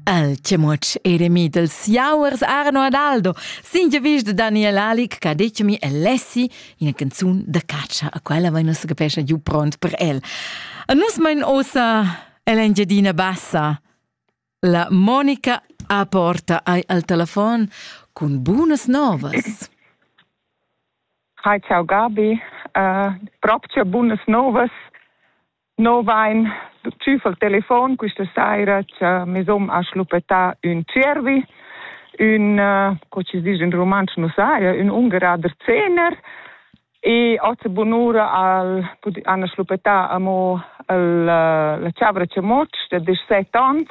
El chemuotsch eremi dels jauers Arno Adaldo, singe vis de Daniel Alic che ha detto mi Alessi ina canzun da caccia, a quella vai nus capescha giù pront per el. A nus mein osa El'Engiadina Bassa. La Monica a porta ai al telefon cun bunas novas. Hi, ciao Gabi. Uh, proprio bunas novas. No vain tschüffel il telefon quista saira cha mes hom ha schluppetà ün tschiervi, ün, co chi disch in rumantsch nu saja, ün ungerader zehner e hoz bunura al han schluppetà amo il, la chavra chamoc da desch set ans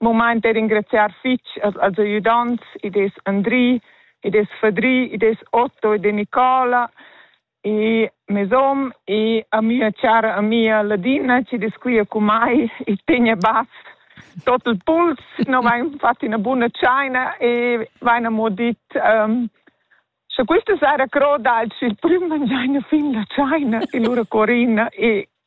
momain per ringraziar fitg als, als ajudants, i des Andri, i des Fadri, i des Otto e de Nicola, e mes om e a mia chara amica Ladina che desquia con mai e tegna bass tot il puls, no vain fat una buona chaina e vain amo dit um, Scha questa sera croda alch il prüm mangiaina fin la chaina e lura corina e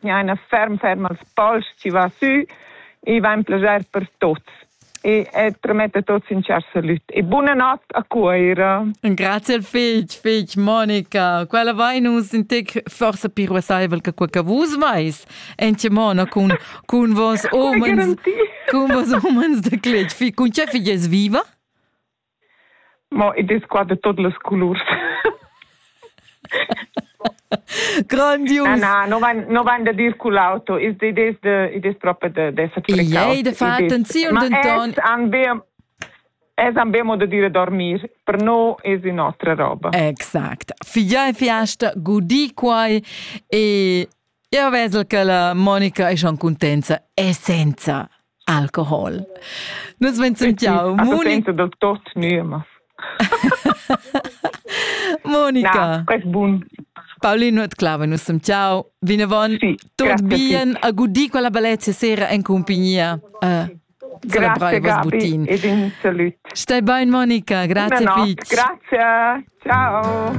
mi ha ina ferm ferm als pols ci va sü e va in plager per tots e et promette tots in char salut e buna nat a Cuoira. Grazie al fig, fig Monica. Quella vai nus in tec forse più ruasaivel che quel che vus vais. Ence Mona con con vos omens con vos omens de clet. Fi con che figes viva? Mo id es qua da tot las colurs. Grandius. Na, na, no vain, no vain da dir cul auto. Id es, de, id es propa da, da esser precaut. Jei, da faten, ziun denton. Han be, es han be modo dire dormir. Per no es in nostra roba. Exact. Fia e fiasta gudi quai e Jeu vesel che la Monica è schon contenta essenza alcohol. Nus vencem ciao. Monica del tot numas. Monica. Na, quest bun. Paulino et Clave, nus sem ciao. Vinavon, sì, tot bien, a gudi quella bellezza sera in compagnia. Uh, Grazie Gabi ed in salut. Stai bene Monica, grazie Fitch. Grazie, ciao.